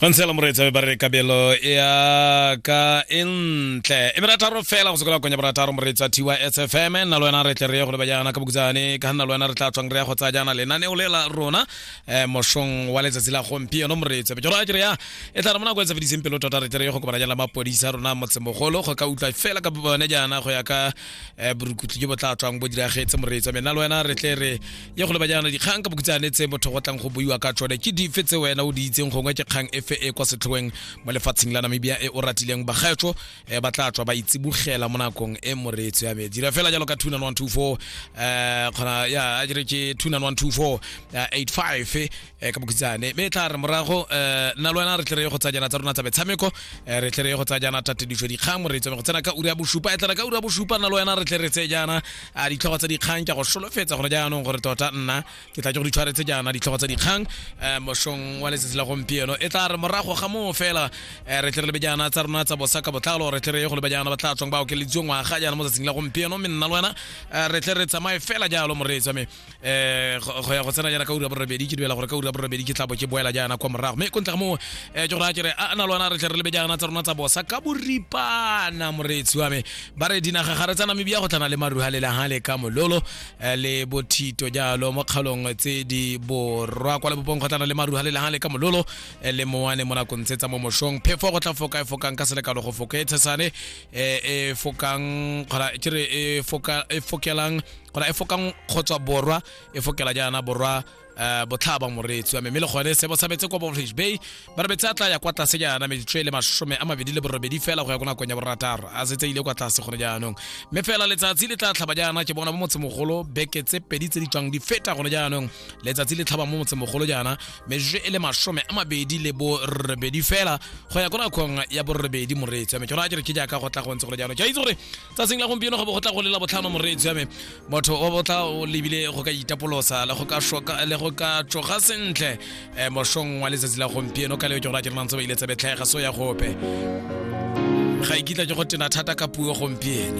go ntshe la moreetsa be ba re kabelo ya ka e ntle e merataro fela go sokola konya barataro moreetsa thiwa sfm nna le wena re tle re ye go leba jaana ka bokutsane ka nna le wena re tla tswang re ya go tsaya jaana lenaneo le la rona um mošong wa letsatsi la gompieno moreetsa bejoro a kereya e tla re mo nako e sa fediseng pelo tota re tle re ye go kopana jaana mapodisa rona motsemogolo go ka utlwa fela ka bone jaana go ya ka um borukutlo jo bo tla tswang bo diragetse moreetsa me nna le wena re tle re ye go lebajana dikgang ka bokutsane tse motho go tlang go buiwa ka tsone ke dife tse wena o di itseng gongwe ke kgang efe e kwa setlhoeng mo lefatsheng la namibia e o ratileng bagaetsho um ba tla tswa ba itsibogela mo nakong e moreetso ya me dira fela jalo ka two nine one two four um kgona ya a dire ke two nine one two four eight five eh, ka bokhitsane mme e tla re morago eh, nna le wena re tle re ye go tsaya jana tsa rona tsa metshameko eh, re tle re ye go tsaya jana tsa tediso dikgang re tsene go tsena ka ura ya bosupa e tla re ka ura ya bosupa nna le wena re tle re tseye jana a ditlhogo tsa dikgang ke a go solofetsa gone jaanong gore tota nna ke tla ke go di tshwaretse jana ditlhogo tsa dikgang eh, mosong wa letsatsi la gompieno e tla re morago ga moo fela eh, re tle re lebe jana tsa rona tsa bosa ka botlalo re tle re ye go lebe jana ba tla tswang ba okelediwe ngwaga jana mo tsatsing la gompieno mme nna le wena eh, re tle re tsamaye fela jalo moreetsi wa me eh go ya go tsena jaana ka ura borobedi ke dumela gore ka ura borobedi ke tlabo ke boela jaana kwa morago mme kontle ga moo eh ke gore a kere a na lwana re tle re lebe jaana tsa rona tsa bosa ka boripana moreetsi wa me ba re dinaga ga re tsa namibia go tlana le maruha le laha le ka mololo eh, le bothito jalo mo kgaolong tse di borwa kwa lebopong go tlana le maruha le laha le ka mololo eh, le mowane mo nakong tse tsa mo moshong phefo go tla foka e fokang ka selekalo go foka e tshesane eh, e fokang kgora ke re e foka- e fokelang gona e fokang kgotswa borwa e fokela jaana borwa um botlhaa ba moreetsi wa me mme le gone se bo tshabetse kwa bofish bay ba re metse a tla ya kwa tlase jaana metswe le masome a mabedi le borobedi fela go ya ko nakong ya borataro a setse ile kwa tlase gone jaanong mme fela letsatsi le tla tlhaba jaana ke bona mo motsemogolo beke tse pedi tse di tswang di feta gone jaanong letsatsi le tlhaba mo motsemogolo jaana metswe e le masome a mabedi le borobedi fela go ya ko nakong ya borobedi moreetsi wa me ke raya ke re ke jaaka go tla go ntse gone jaanong ke a itse gore tsatsing la gompieno go bo go tla go lela botlhano moreetsi wa me motho o bo tla o lebile go ka itapolosa le go ka shoka le go ka tsoga sentle um moshong wa letsatsi la gompieno ka leo ke gore a ke renang tse ba ile tsa betlhaega so ya gope ga e kitla ke go tena thata ka puo gompieno